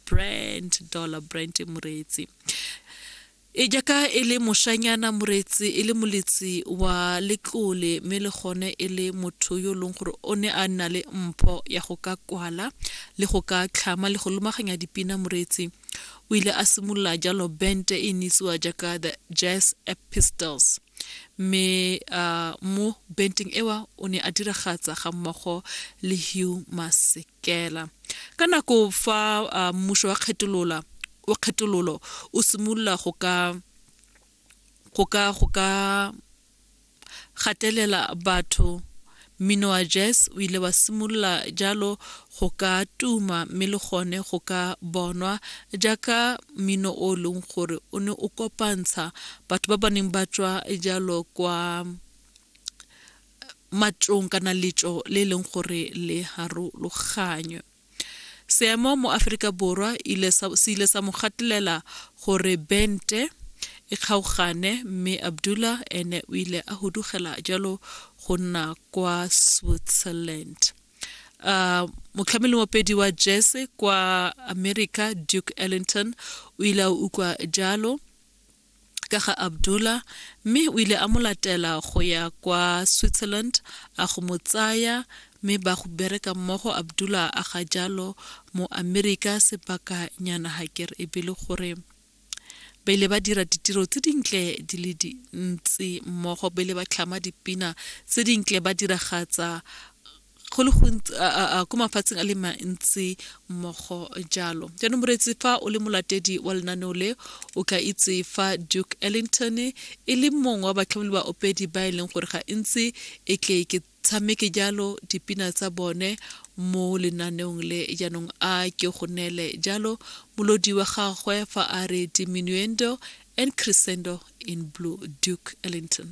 brand dollar brand moreetsi e jaaka e le moshanyana moreetsi e le moletsi wa letlole mme le gone e le motho yo e leng gore o ne a nna le mpho ya go ka kwala le go ka tlhama le go lomaganya dipina moreetsi o ile a simolola jalo bente e neitsiwa jaaka the jazz epistles mme uh, mo benteng ewa o ne a diragatsa ga mmogo le hugh masek kela ka nako fa uh, mmušo wa kgetolola wa kgetololo o simolola go ka go ka go ka gatelela batho mmino wa jazz o ile wa simolola jalo go ka tuma mme le gone go ka bonwa jaaka mmino o e leng gore o ne o kopantsha batho ba ba neng ba tswa jalo kwa matšong kana letšo le e leng gore le harologanywe seemo mo aforika borwa se ile sa mo gatelela gore bente e kgaogane mme abdullah ene o ile a hudugela jalo go nna kwa switzerland uh, motlhameli mopedi wa jese kwa america duke ellington o ile a utlwa jalo ka ga Abdullah mme o ile a mo latela go ya kwa Switzerland a go mo tsaya mme ba go bereka mmogo Abdullah a ga jalo mo Amerika sebaka nyana hakere e bile gore ba ile ba dira ditiro tse dintle di le dintsi mmogo ba ile ba tlhama dipina tse dintle ba diragatsa go le gontsi ko mafatsheng a le mantsi mmogo jalo jaanong moreetsi fa o le molatedi wa lenaneo le o ka itse fa duke ellington e le mongwe wa batlhomeli ba opedi ba e leng gore ga e ntse e tle ke tshameke jalo dipina tsa bone mo lenaneong le jaanong a ke go neele jalo molodi wa gagwe fa a re diminuendo and crescendo in blue duke ellington